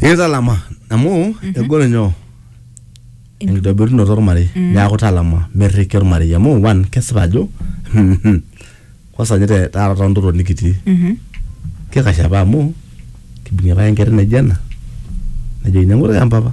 ikitalama amu egol nyoo enkitobirunoto ormarei neaku talama merriki ormarei amu one kesipa ajo kwanza ninye te- taata tontoto nikitii kikash apa amu kibung'ie apa enkerai naijo ena nejokini eng'ura empapa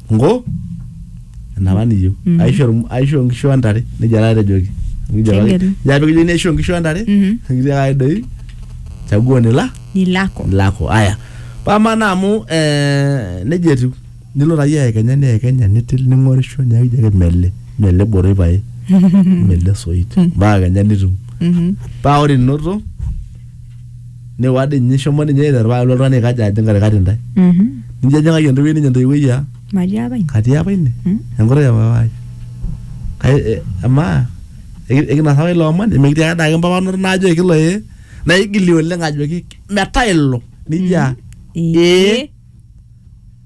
ngo enapa niyieu Mhm. aisho irm- aisho nkishu ontare nejia taata etejoki Kijo apa- Kegelu. kijo apa kijo neisho nkishu ontare Mhm. kijo ake doi chaguo nila ni lako lako aya pamana amu eh, nejia etiu nilo taayie aekenya niekenya nitil ning'orisho niaku ijo ake mele mele boroi pae mele soit mpaka kenya nitum Mhm. paa ore inoto Nijo ade ninye ishomo ninye aiteru paa kelo oltung'ani aikaja ajing katikati intae. Mhm. Nijo ejing'aki entoiwuoi ninye entoiwuoi aa Matii apa ine. katii apa ine Mm. enkutuk e papa ai. Kai e- amaa eki- ekinasa apa ilo omoni mikitii ake adake mpapanoto naajo ekilo ee naigili oleng ajoki metaa ilo nijo aa ee.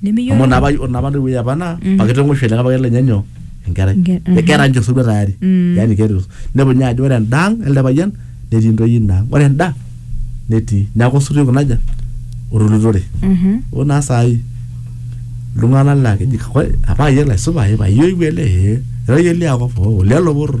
amu nimiyiolo napa napa ntoiwuoi apa naa pakitong'oisho ele payian lenye nyoo enkerai Enke- aha. ekera ninche osotua tayari Mm. yani keeta os- nepuo ninye ajo ore enda ang elde payian netii ntoyie ina ang ore enda netii neeku osotua oiko naja otulutore Mhm. oo naa saai iltung'anak laa keji kakwa apa ayiok laisupa ee payiewuo ele ee era iyie liakop oo lelo poror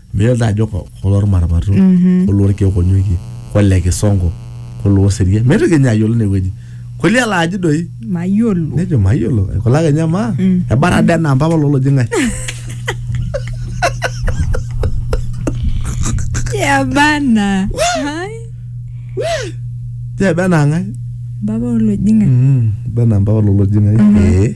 Meyiolo taa ajo ko- koloo lmarmato, koloo lkeek onyokie, kole kisongo, koloo oserian. Meitu kenya ayiolo ine wueji. Kolia laa aji doi? Mayiolo. Nejo mayiolo. Kole ake ninye amaa, ebara dee enaa mpapa loo loji ng'ae. Ya bana. Hai. Jee ebe enaa ng'ae? Baba olojing'ani. Mm, ebe enaa mpapa loo loji ng'ae. Ee.